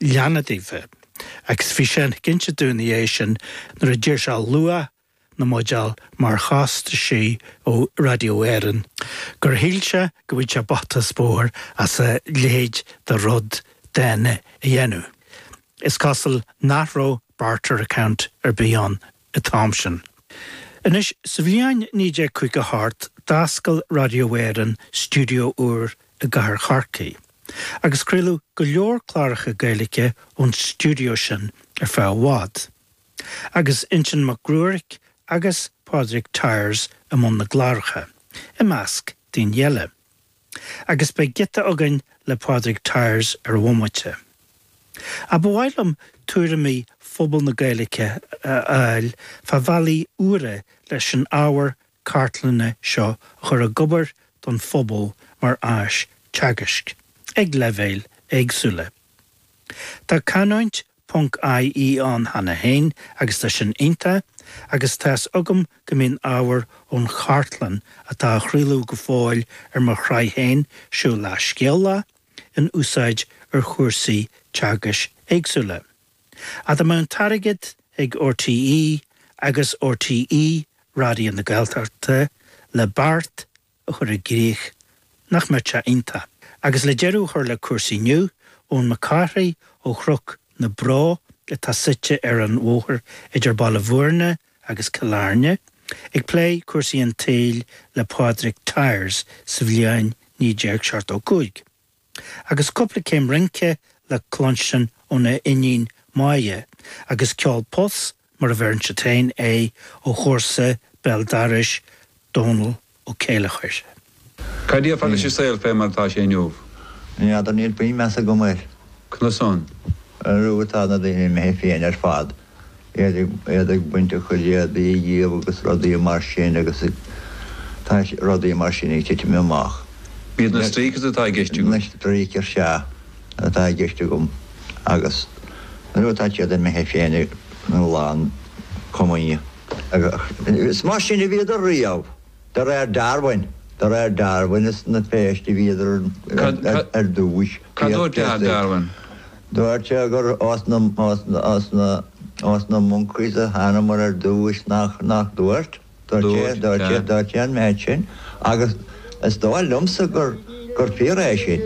leanna daofa, agus bhí sé ag insint dúinn ina dhiaidh sin nuair a d'iarr sé luach na mbuidéal mar chostaisí ó Raidió Éireann, gur shíl sé go bhfaigheadh sé bata is bóthar as a leithéid de rud dána a dhéanamh. Is cosúil nach raibh barter account ar bith ann. an t-am sin. Anois, sa bhliain 1958, d'oscail Radio Éireann studio úr i gcathair Chorcaí, agus craoladh go leor cláracha Gaeilge ón studio sin ar feadh i bhfad. Agus Uinsionn Mac Gruairc agus Pádraig Tyers i mbun na gcláracha, i measc daoine eile. Agus beidh giota againn le Pádraig Tyers ar an bhomaite. Ach ba mhaith liom tuairimí phobal na Gaeilge a fháil fá bhealaí úra leis an ábhar cartlainne seo a chur ag obair don phobal mar áis teagaisc, ag leibhéil éagsúla. Tá canúint ie ann cheana féin agus tá sin iontach agus tá 'fhios agam go mbíonn ábhar ón chartlann atá á chraoladh go fóill ar mo shraith féin, Siúlach Scéalach, in úsáid ar chúrsaí teagaisc éagsúla. Ach dá mbeadh an t-airgead ag RTÉ agus RTÉ Raidió na Gaeltachta le beart a chur i gcrích, nach mbeadh sé iontach? Agus le deireadh a chur le cúrsaí inniu, Eoin Mac Cárthaigh ó Chnoc na Bró atá suite ar an bhóthar idir Baile Bhúirne agus Cill Airne, ag plé cúrsaí an tsaoil le Pádraig Tyers sa bhliain 1975. agus cúpla céim rince le cluinstin óna iníon Máire, agus ceol pus mar a bheireann siad féin air, ó chomharsa béal dorais Dónall Ó Céilleachair. Cad déarfá leis an saol fé mar atá sé inniu? N'fheadar, níl puinn measa agam air. Conas san? Arú tá na daoine imithe fiáin ar fad. iad ag baint a gcuid éadaí dhíobh agus rudaí mar sin agus tá rudaí mar sin ag titim amach. Iad na streakers atá i gceist agat. Na streakers, sea, atá i gceist agam agus nuair atá siad imithe fiáin ag an lán comaoine agus is mar sin a bhíodar riamh. De réir Darwin. De réir Darwin is ina bpéistí a bhíodar ar dtúis. Cad dúirt Athair Darwin? Dúirt sé gur ós na monkeys a thánamar ar dtúis, nach dúirt? Dúirt. Dúirt sé. Dúirt sé an méid sin agus is dóigh liomsa gur fíor é sin.